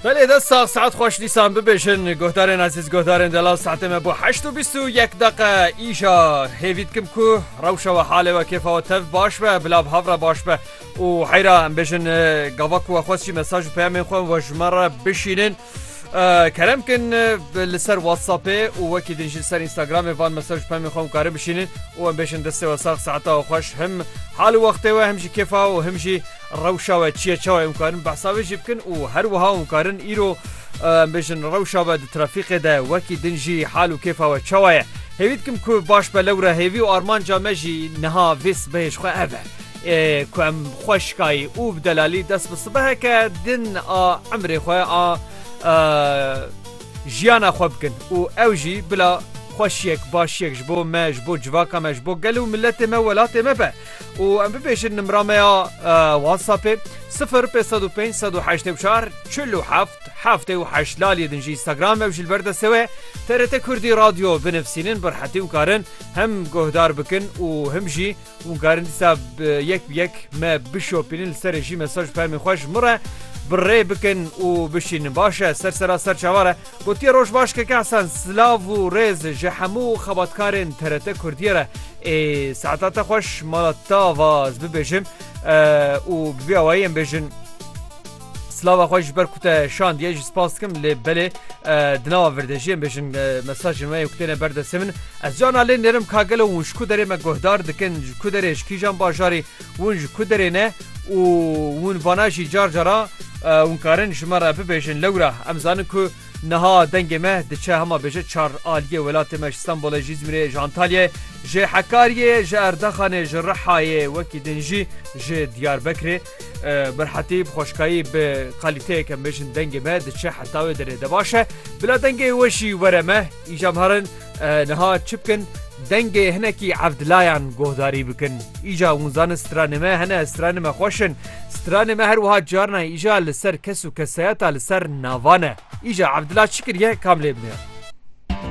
Belê dest sax saet xweş dîsan bibêjin guhdarên ezîz guhdarên delal saetê me bo heşt û bîst û yek deqe îja hêvî dikim ku rewşa we halê we kêfa we tev baş be bila bi hev re baş be û heyra em bêjin gava ku we xwest jî mesaj û peyamên xwe we ji me re bişînin Kerem kin li ser WhatsAppê û wekî din jî li ser Instagramê van mesaj pemê xwe em karin bişînin û em bêjin destê we sax saeta we xweş him hal û wextê we him jî kêfa û him jî rewşa we çiye çawa em karin behsa wê jî bikin û her wiha em karin îro em bêjin rewşa we di trafîqê de wekî din jî hal û kêfa we çawa ye. Hêvî dikim ku baş be lewre hêvî û armanca me jî niha vê sibehê ji xwe ev e. Ê ku em xweşkayî û bi delalî dest bi sibeheke din a emrê xwe a jiyana xwe bikin û ew jî bila xweşiyek başiyek ji bo me ji bo civaka me ji bo gel û miletê me welatê me be û em bibêjin nimra me ya WhatsAppê sifir pê sed û pênc sed û heştê û çar çil û heft heftê û heşt laliyê din jî Instagram ew ji li ber destê we TRT Kurdî Radyo binivîsînin bi rehetî hûn karin him guhdar bikin û him jî Hûn karin dîsa yek bi yek me bişopînin li serê jî mesaj û fermên xwe ji min re bi rê bikin û bişînin. Baş e, ser sera ser çavar e. Gotiye roj baş Keke Hesen, silav û rêz ji hemû xebatkarên TRT Kurdiyê re. Ê saeta te xweş mala te ava ez bibêjim û bi vî awayî em bêjin. Slava xwe ji ber ku te şandiye jî spas dikim lê belê di nava virdejiyên bêjin mesajên me ku têne ber destê min ez cana lê nêrim ka gelo hûn ji ku derê me guhdar dikin ji ku derê ji kîjan bajarê hûn ji ku derê ne û hûn vana jî car cara hûn karin ji me re bibêjin lewra em zanin ku niha dengê me diçe hema bêje çar aliyê welatê me ji Stenbolê ji İzmirê ji Antalyayê ji Hekariyê ji Erdaxanê ji Rihayê wekî din jî ji Diyarbekirê Mirhetî bi xweşkayî bi qalîteyeke em bêjin dengê me diçe heta wê derê de baş e. Bila dengê we jî were me îja em herin niha çi bikin dengê hinekî evdilayan guhdarî bikin. Îja hûn zanin stranê me hene stranê me xweş in. Stranê me her wiha carna îja li ser kes û kesayeta li ser navan e. Îja evdila çi kiriye kam lê biniya.